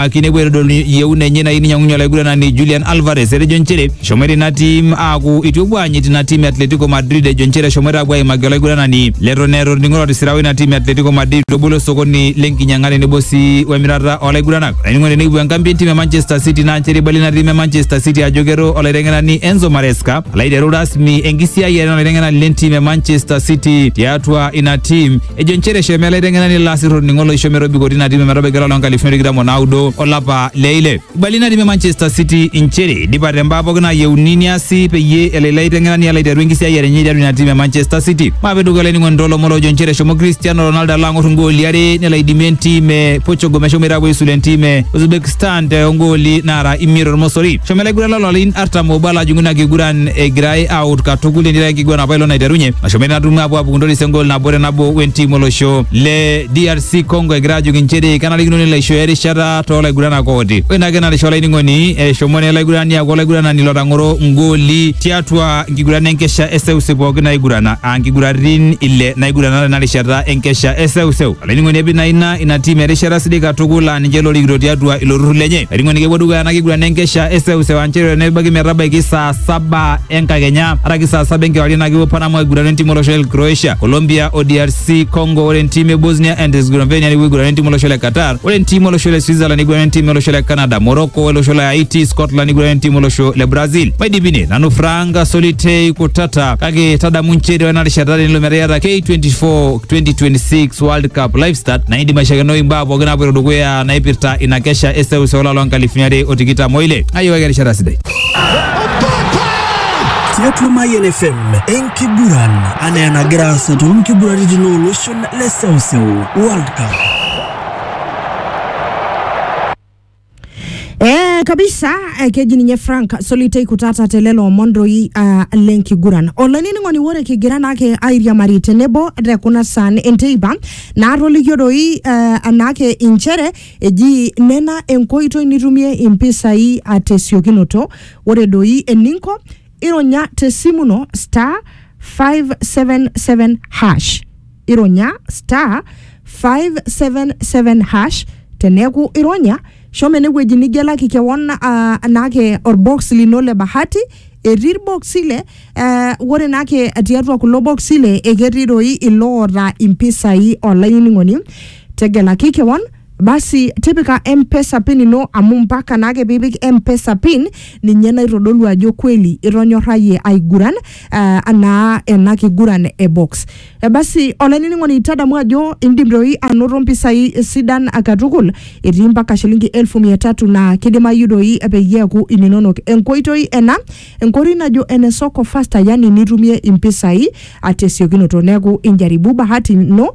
ake inepuo aitodolu yieuna enye nayieu ninyiang'unye olaiguranani Julian Alvarez etejo nchere eshomoita ina tim aaku itu epuo aanyit ina tim e Atletico Madrid ejo nchere eshomoita aapuo aimaki olaiguranani leton eeta orning'o lotisira oina tim e Atletico Madrid lobolo osokoni lenkinyiang'a tenebo sii wemirata olaiguranak olainining'oni tenekipuo enkambi entim e Manchester City naa nchere eibali ina tim e Manchester City ajo kero olaiteng'enani Enzo Maresca alaiteru rasmi enkisiayiare olaiteng'enani lentim e Manchester City tiatua ina tim Ejo nchere eshomo ele aiteng'enani ilo asirr olning'o loisho metobiko tina tim metabaiki olapa loonkalifuni tikitam o naudo olapa le ile. Ibali ina tim e Manchester City inchere idipa te mbaa pooki naayieuni niasi peyie elo ilo aiteng'enani alo aiteru enkisiayiare enye tiatua ina tim e Manchester City. Maape dukuya olainining'oni toolomon oojo nchere eshomo Cristiano Ronaldo alo ang'or ingooli are nelo aidimie entim e Portugal meshomoita aapuo aisulu entim e Uzbekistan too ngooli naara imiet tormosori. Eshomo ele aiguranani lolarin artam obo ala ajing'u ina kiguran egirai aut katukul enira enkiguran apa ilo naiterunye nashomo ina tumo apuo apuku ntoris engol nabo te nabo wentim olosho le DRC Congo egira ajoki inchere kenarikino nelo aishooyo erishata toolaiguranak ooti ore ina kena risha olainining'oni eshomo naa olaigurani aaku olaiguranani lotang'oro ngoli tiatua nkiguran enkesha eseuseu pooki naigurana aa nkiguratin ile naigurana tena rishata enkesha eseuseu Olainining'oni epi naa ina ina tiim erishata sidai katukul laa ninche lorikito tiatua ilo turrur lenye. Olainining'oni kepuo dukuya ena kiguran enkesha eseuseu aa nchere nebaiki metabaiki saa saba enkakenya araki saa saba enkewarie naa kepuo Panama aigurana entiim olosho le Croatia, Colombia o DRC Congo. Ore entiim e Bosnia and Herzegovina nepuo aigurana entiim olosho le Qatar. Ore entiim olosho le Switzerland neigurana entiim olosho le Canada, Morocco olosho le Haiti, Scotland neigurana entiim olosho le Brazil. Maidipi ine, nanu Frank Solitei Kutata kake tadamu nchere ore ena rishata tenelo metaa iyata K24 2026 world cup live start naidi maishakeno imbaa pookin naapoito dukuya naipirta ina kesha eseuseu olapa loo nkalifuni are o tikitam oile ayiwaki erishata sidai tiatua Mayian FM enkiguran anaa enagira aasa too nkiguraritin ooloshon le seuseu World Cup. Eh, kabisa eh, keji ninye frank solitei kutata telelo omon doi ah, lenkiguran olainining'oni ore kigira naake airiamari tenebo te kuna saan enteipa naatolikio doi eh, anaake inchere eji nena enkoitoi nitumie impisai ah, tesiokinoto ore doi eninko ironya tesimu ino star 577 hash ironya star 577 hash teneeku ironya shomo enewueji nigelaki kewon ah, naake orbox lino le bahati etii irboksi le eh, ore naake tiatua kulo boksi le eketii doi iloota impisai olainining'oni tegelaki kewon basi tipika mpesa pin ino amu mpaka naake piipik mpesa pin ninye naitodolu ajo kweli itonyorrayie aiguran uh, anaa ena kiguran e box Eh, basi olainining'oni tadamu ajo indim doi anoto mpisai sidan katukul etii mpaka shilingi elfu mia tatu naa kidimayu doi peyie eeku ininonok enkoitoi ena enkoitoi najo ene soko fasta yani nitumie impisai atesiokinoto neeku injaribu bahati ino